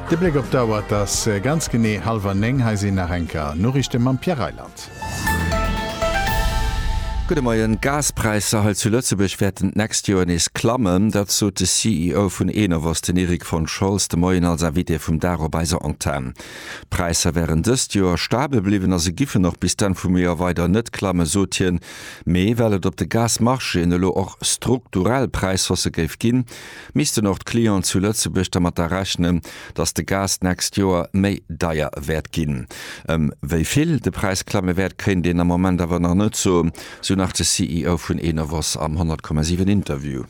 De Bléck op d'Auer, et ass ganz genee hallwer néng. Hei sinn nach eng Kéier Noriichte mam Pierre Reyland. Gudde Moien. D'Gaspräisser hei zu Lëtzebuerg wäerten d'nächst Joer nees klammen. Dat sot de CEO vun Enovos, den Erik von Scholz, de Moien als Invité vum Dag op eiser Antenn. D'Präisser wären dëst Joer stabel bliwwen a se giffen och bis d'Enn vum Joer weider net klammen, sot hien. Mee well et op de Gasmarchéen elo och strukturell Präishausse géif ginn, missten och d'Clienten zu Lëtzebuerg dermatter rechnen, dass de Gas d'nächst Joer méi deier wäert ginn. Ëm wéi vill de Präis klamme wäert, kéint een am Moment awer nach net soen, sou nach de CEO vun Enovos am 100,7 Interview.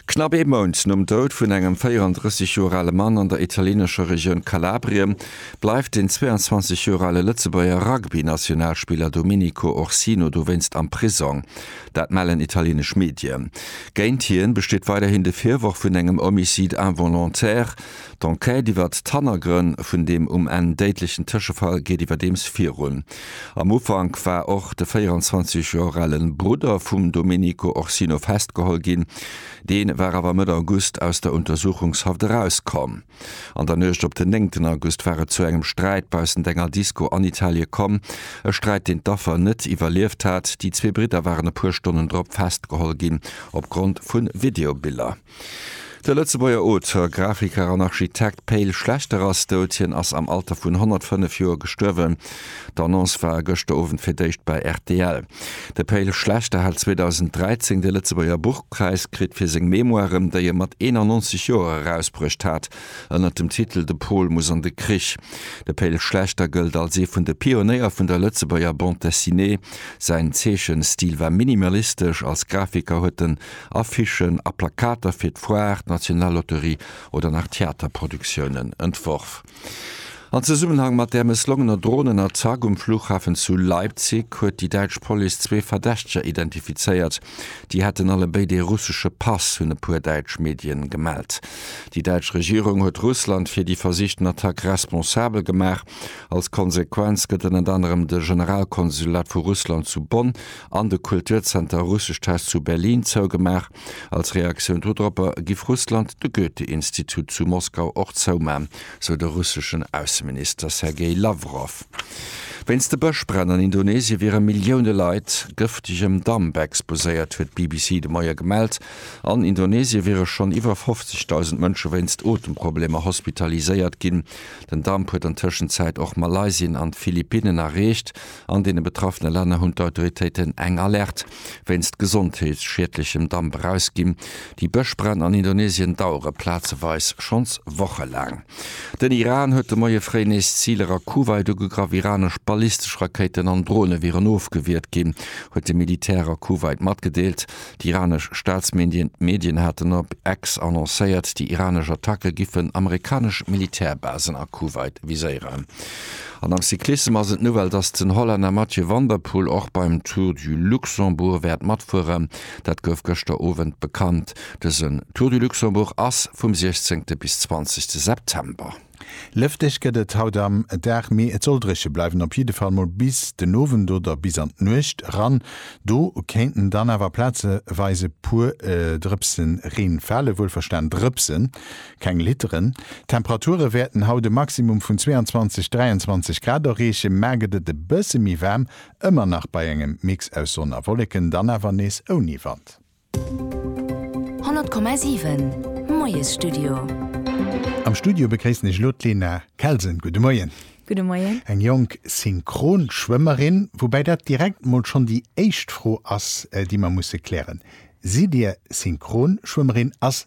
Knapp ee Mount nom Doud vun engem 34 Joer ale Mann an der italienescher Regioun Kalabrien, bleift den 22 Joer ale Lëtzebuerger Rugby-Nationalspiller Domenico Orsino dowéinst am Prisong. Dat mellen italienesch Medien. Géint hien besteet weiderhin de Virworf vun engem Homicide involontaire. D'Enquête iwwert d'Hannergrënn vun deem um Enn déidlechen Tëschefall geet iwwerdeems virun. Am Ufank war och de 24 Joer ale Brudder vum Domenico Orsino festgeholl ginn. Dee war awer Mëtt August aus der Untersuchungshaft erauskomm. An der Nuecht op den néngten August war et zu engem Sträit baussent enger Disko an Italie komm. E Sträit, deen d'Affer net iwwerlieft hat. Déi zwee Bridder waren e puer Stonnen drop festgeholl ginn, opgrond vu Videobiller. De Lëtzebuerger Auteur, Grafiker an Architekt Pe'l Schlechter ass dout. Hien ass am Alter vun 105 Joer gestuerwen. D'Annonce war gëschter Owend fir d'éischt bei rtl. De Pe'l Schlechter hat 2013 de Lëtzebuerger Buchpräis kritt fir seng Memoiren, déi e mat 91 Joer erausbruecht hat, ënnert dem Titel De Pol muss an de Krich. De Pe'l Schlechter gëllt als ee vun de Pionéier vun der Lëtzebuerger Bande Dessinée. Säin Zeechenstil war minimalistesch, als Grafiker huet en Affichen a Plakater fir d'Foire, d'Nationalloterie oder nach Theaterproduktiounen entworf. An Zesummenhang mat där mësslongener Dronenattack um Flughafen zu Leipzig huet déi däitsch Police zwee Verdächteger identifizéiert. Déi hätten allebéid ee russesche Pass, hunn e puer däitsch Medien gemellt. Déi däitsch Regierung huet Russland fir déi versichten Attack responsabel gemaach. Als Konsequenz gëtt ënnert anerem de Generalkonsulat vu Russland zu Bonn an de Kulturzenter Russisch Test zu Berlin zougemaach. Als Reaktioun dodropper giff Russland de Goethe-Institut zu Moskau och zouman, sou de russeschen Ausseminister Sergei Lawrow. Wéinst de Bëschbränn an Indonesie wiere Millioune Leit gëftegem Damp exposéiert, huet d'BBC de Moie gemellt. An Indonesie wiere schonn iwwer 50.000 Mënsche wéinst Otemproblemer hospitaliséiert ginn. Den Damp huet an Tëschenzäit och Malaysien an d'Philippinnen erreecht. An deene betraffene Länner hunn d'Autoritéiten eng Alerte Wéinst gesondheetsschiedlechem Damp erausginn. Déi Bëschbränn an Indonesien dauere plazeweis schonns wochelaang. Den Iran huet de Moie fréi nees Ziler a Kuwait ugegraff. Iranesch ballistesch Rakéiten an Drone wieren ofgewiert ginn, huet de Militär a Kuwait matgedeelt. D'iranesch Staatsmedien haten op X annoncéiert, déi iranesch Attacke giffen amerikanesch Militärbasen a Kuwait viséieren. An am Cyclissem ass et d'Nouvelle, dass den Hollänner Mathieu van der Poel och beim Tour du Luxembourg wäert matfueren. Dat gouf gëschter Owend bekannt. Dësen Tour du Luxembourg ass vum 16. bis 20. September. Lëfteg gëtt et haut am Dag, mee et soll dréche bleiwen, op jidde Fall mol bis den Owend oder bis an d'Nuecht eran. Do kéinten dann awer plazeweis e puer Drëpse Reen falen, wuelverstan Drëpsen. Keng Litteren. D'Temperature wäerten haut e Maximum vun 22, 23 Grad erreechen, mar gëtt et e bësse méi waarm, ëmmer nach bei engem Mix aus Sonn a Wolleken, dann awer nees ouni Wand. 100,7, Moiesstudio. Am Studio begréissen ech elo d'Lena Kelsen. Gudde Moien. Gudde Moien. Eng jonk Synchronschwëmmerin. Woubäi dat direkt mol schonn déi éischt Fro ass, déi mer musse klären. Sidd Dir Synchronschwëmmerin? Ass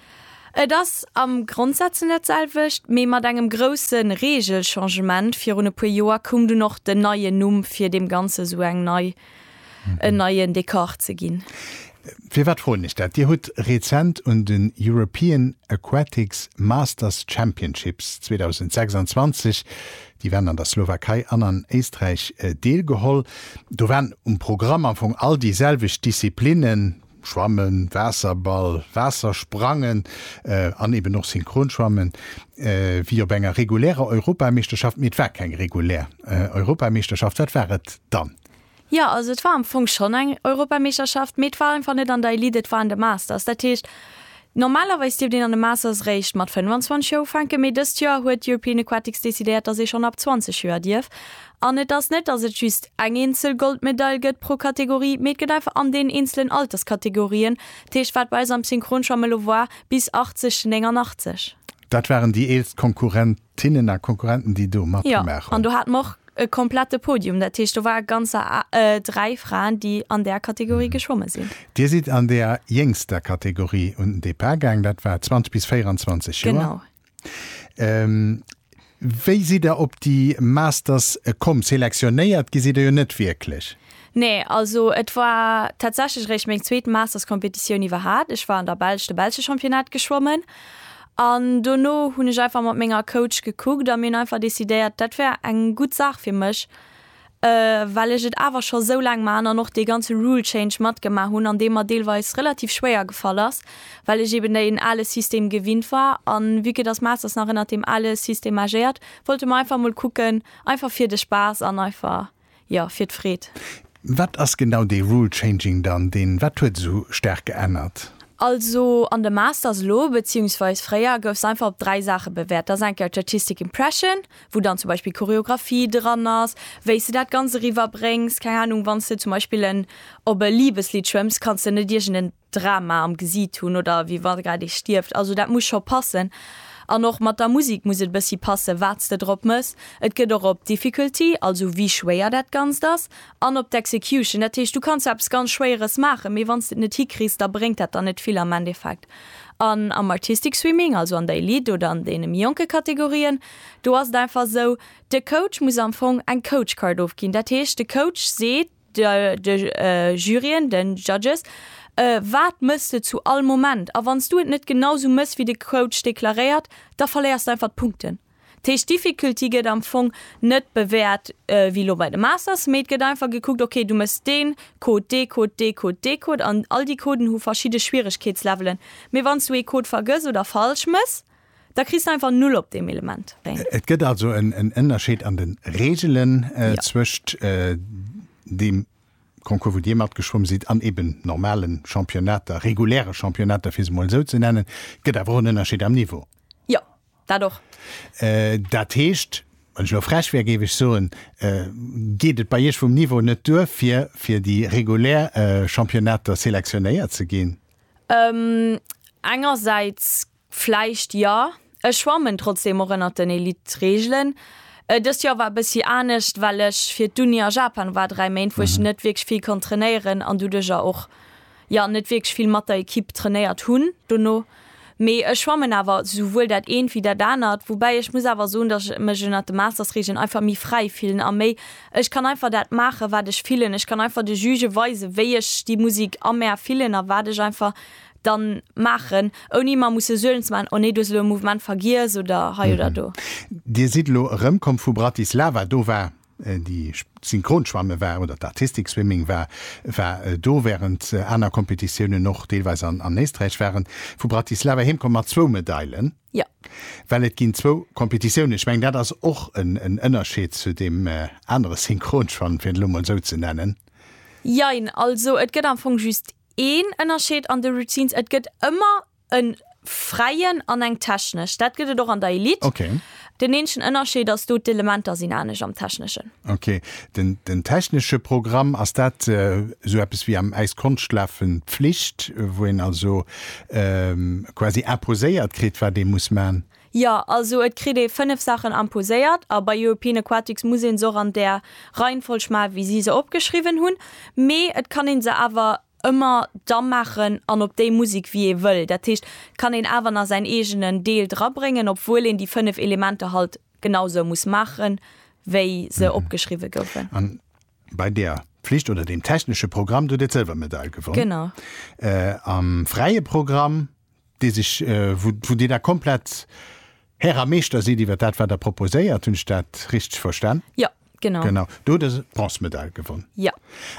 Et ass am Grondsätzen dat selwecht, mee mat engem grousse Regelchangement. Virun e puer Joer koum dunn och den neien Numm, fir deem Ganze sou eng nei, en neien Dekor ze ginn. Firwat froen ech dat? Dir hutt rezent un den European Aquatics Masters Championships 2026, déi waren an der Slowakei an an Éisträich, deelgeholl. Do waren um Programm am Fong all déi selwecht Disziplinnen, Schwammen, Waasserball, Waassersprangen an eben och Synchronschwammen, wéi op enger regulärer Europameeschterschaft, mee et war keng regulär Europameeschterschaft. Wat war et dann? Jo, also et war am Fong schonn eng Europameeschterschaft, mee et war einfach net an der Elite, et war an de Masters. Dat heescht, Normalerweis dierft een an de Masters réischt mat 25 Joer ufänken, mee dëst Joer huet European Aquatics decidéiert, dass ee schonn ab 20 Joer dierf. An et ass net, dass et just eng eenzel Goldmedail gëtt pro Kategorie, mee et gëtt einfach an deenen eenzelen Alterskategorien, dat heescht, wat bei eis am Synchronschwamm elo war, bis 80, 89. Dat waren déi eelst Konkurrenten. D'Hinnen a Konkurrenten, déi do matgemaach hunn. Jo, an do hate mer och e komplette Podium. Dat heescht, do ware ganzer dräi Fraen, déi an där Kategorie geschwomme sinn. Dir sidd an där jéngster Kategorie un den Depart gaang, dat war 20 bis 24 Joer. Genau. Wéi sidd Der op déi Masters komm? Selektionéiert gi sidd Der jo net wierklech. Nee, also et war tatsächlech eréischt meng zweet Masters-Competitioun iwwerhaat. Ech war an der Belsch de belsche Championnat geschwommen an dono hunn ech einfach mat menger Coach gekuckt a mir hunn einfach decidéiert, dat wär eng gutt Saach fir mech, well ech et awer scho sou laang maachen an och dee ganze Rule Change matgemaach hunn, an dee mer deelweis relativ schwéier gefall ass, well ech eben deen ale System gewinnt war. A vue que dass Masters nach ënnert deem ale System agéiert, wollte mer einfach mol kucken, einfach fir de Spaass an einfach. jo, fir d'Freed. Wat ass genau dee Rule Changing dann? Deen wat huet esou staark geännert? Also an de Masters elo, beziehungsweis fréier, gouf se einfach op dräi Saache bewäert. Da ass eng Kéier d'Statistik Impression, wou dann zum Beispill Choreographie dran ass, wéi s de dat Ganzt eriwwerbréngs. Keng Ahnung, wann s de zum Beispill en op e Liebeslidd schwëmms, kanns de net iergend en Drama am Gesiit hunn oder wéi wa grad ee stierft. Also dat muss scho passen. An och mat der Musek muss et e bëssi passen, wat s de drop méchs. Et gëtt och op d'Difficulty, also wéi schwéier dat Ganzt ass, an op d'Execution. Dat heescht, du kanns eppes ganz Schwéieres maachen, mee wann s de et net hikriss, da bréngt dat der net vill am Endeffekt. An am Artistic Swimming, also an der Elite oder an deene méi jonke Kategorien, do ass et einfach esou, de Coach muss am Fong eng Coach Card ofginn. Dat heescht, de Coach seet. de Juryen, den Judges, wat mëss de zu all Moment a wann s du et net genau sou mëss wéi de Coach deklaréiert, da verléiers de einfach d'Punkten. Dat heescht d'Difficulty gëtt am Fong net bewäert wéi elo bei de Masters, mee et gëtt einfach gekuckt, ok du mëss deen Code, dee Code, dee Code, dee Code an all déi Coden hu verschidde Schwieregkeetslevelen, mee wann s du ee Code vergëss oder falsch mëss, Da kriss de einfach Null op deem Element. Et gëtt also en Ënnerscheed an de Reegelen zwëscht deem Concours, wou Dir matgeschwomm sidd, an eben normale Championnater, reguläre Championnater, fir se emol esou ze nennen. Et gëtt awer och en Ënnerscheed am Niveau. Jo, dat och. Dat heescht, wann ech elo frech wär, géif ech soen, geet et bei Iech vum Niveau net duer, fir fir déi regulär Championnater selektionéiert ze ginn? Engersäits Vläicht jo. Ech schwammen trotzdeem och ënnert den Elite-Reegelen. Dëst Joer war e bëssi anescht, well ech fir d'Uni a Japan war, 3 Méint, wou ech net wierklech vill konnt trainéieren an doduerjer och jo net wierklech vill mat der Ekipp trainéiert hunn dono. Mee ech schwammen awer souwuel dat eent wéi dat anert, woubäi ech muss awer soen, datt ech mech ënnert de Masters-Reegelen einfach méi fräi fillen a méi, ech kann einfach dat maachen, wat ech fillen. Ech kann einfach de Juge weisen, wéi ech déi Musek a mär fillen a wat ech einfach dann maachen ouni mer musse Suelen ze maachen, oh nee du hues elo e Mouvement vergiess oder hei oder do. Dir sidd elo erëmkomm vu Bratislava, do war déi Synchronschwamme war oder d'Artistic Swimming war war do, wärend aner Competitiounen och deelweis an Éisträich waren. Vu Bratislava heemkomm mat zwou Medailen. Jo. Well et ginn zwou Competitiounen, ech mengen dat ass och en Ënnerscheed zu deem anere Synchronschwamm, fir et elo emol esou ze nennen. Jein, also et gëtt am Fong just Een Ënnerscheed an de Routines, et gëtt ëmmer e fräien an eng technesch. Dat gëtt et och an der Elite. Okay. Den eenzegen Ënnerscheed ass do, d'Elementer sinn anescht am techneschen. Okay. Den, den technesche Programm, ass dat esou eppes wéi am Äiskonschtlaafen d'Pflicht, wou een also quasi imposéiert kritt, wat ee muss man? Jo, also et kritt ee fënnef Saachen imposéiert, a bei European Aquatics muss ee se och an där Reihenfolg maachen, wéi si se opgeschriwwen hunn. Mee et kann ee se awer ëmmer da maachen an op déi Musek, wéi ee wëll. Dat heescht, et kann een awer nach säin eegenen Deel drabréngen, obwuel een déi fënnef Elementer halt genau esou muss maachen, wéi se opgeschriwwen goufen. A bei der Pflicht oder deem technesche Programm, do hutt Dir d'Sëlwermedail gewonn. Genau. Am fräie Programm? dee sech, wou, wou Dir da komplett Här a Meeschter sidd iwwer dat, wat Der proposéiert. Hunn ech dat richteg verstan? Jo, genau. Genau. Do hutt Der d'Bronzemedail gewonn. Jo.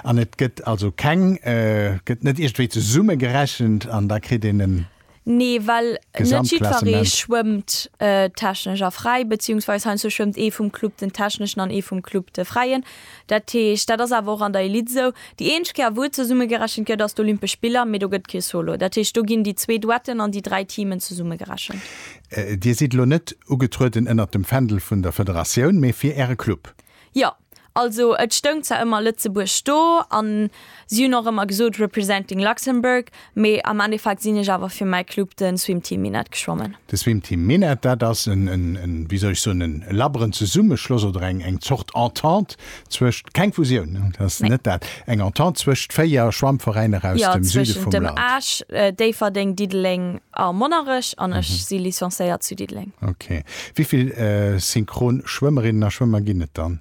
An et gëtt also keng, gëtt net iergendwéi zesummegerechent an da kritt een en. Nee, well net jiddweree schwëmmt technesch a fräi, beziehungsweis heiansdo schwëmmt ee vum Club den techneschen an ee vum Club de fräien. Dat heescht, dat ass awer och an der Elite esou, déi eenzeg Kéier wou et zesummegerechent gëtt ass d'Olympesch Spiller, mee do gëtt et kee Solo. Dat heescht, do ginn déi zwee Duetten an déi dräi Teamen zesummegerechent. Dir sidd elo net ugetrueden ënnert dem Fändel vun der Federatioun, mee fir Äre Club? Jo. Also et stoung zwar ëmmer Lëtzebuerg do an. Si hunn och ëmmer gesot Representing Luxembourg, mee am Endeffekt sinn ech awer fir mäi Club, de Swim Team Minett, geschwommen. De Swim Team Minett, dat ass en, en, wéi soll ech soen, en labberen Zesummeschloss oder eng, eng Zort Entente zwëscht, keng Fusioun, dat ass Nee. net dat, eng Entente zwëscht véier Schwammveräiner aus Ja, dem Süde zwëschent vum dem Land. Esch, Déifferdeng, Diddeleng a Monnerech an ech si licenciéiert zu Diddeleng. Ok. Wéi vill synchron Schwëmmerinnen a Schwëmmer ginn et dann?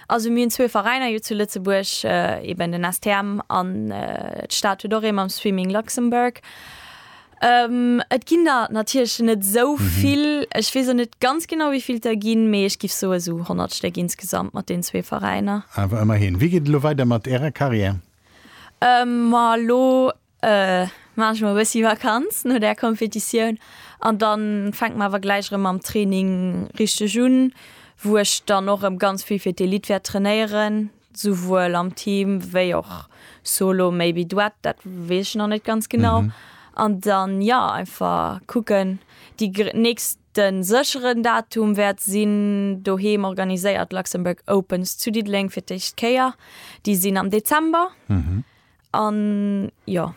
Also mir hunn zwee Veräiner jo zu Lëtzebuerg, eben den STM an d'Stad huet och ee mam Swimming Luxembourg. Et ginn der natierlech net esou vill. Ech weess och net ganz genau, wéi vill et der ginn, mee ech giff soen, esou 100 Stéck insgesamt mat deenen zwee Veräiner. Awer ëmmerhin. Wéi geet et elo weider mat Ärer Karriär? Ma elo Maan ech mol e bessi Vakanz no der Kompetitioun an dann fänkt mer awer gläich erem mam Training richteg un wou ech dann och erem ganz vill fir d'Elite wärt trainéieren souwuel am Team wei och solo maybe Duett dat wees ech nach net ganz genau an dann jo einfach kucken déi nächsten secheren Datum wärt sin doheem organiséiert Luxembourg Opens zu Diddeleng fir d'éischt Kéier déi sin am Dezember. An jo.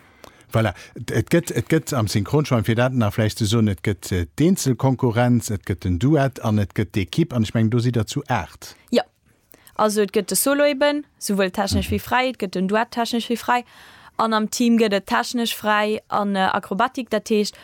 Voilà, et gëtt et gëtt am Synchronschwämm, fir dat nach vläicht ze soen, et gëtt d'Eenzelkonkurrenz, et gëtt den Duett an et gëtt d'Ekipp. An ech mengen, do sidd Der zu aacht. Jo. Also et gëtt de Solo eben, souwuel technesch wéi fräi, et gëtt den Duett, technesch wéi fräi, an am Team gëtt et technesch fräi an Akrobatik. Dat heescht.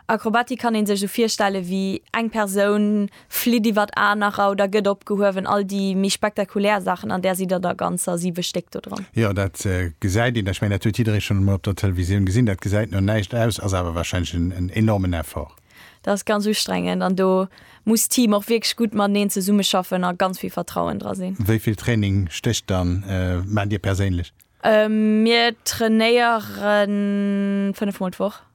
Akrobatik kann een sech esou virstellen wéi eng Persoun flitt iwwert anerer oder gëtt opgehuewen, all déi méi spektakulär Saachen an där sidd der der ganzer 7 Stéck do dran. Jo, dat gesäit een, ech mengen dat huet jidderee schonn emol op der Televisioun gesinn, dat gesäit no näischt aus, ass awer warscheinlech en enormen Effort. Dat ass ganz ustrengend an do muss d'Team och wierklech gutt mateneen zesummeschaffen a ganz vill Vertrauen dra sinn. Wéi vill Training stécht dann, maacht Dir perséinlech? Mir trainéieren 5 mol d'Woch.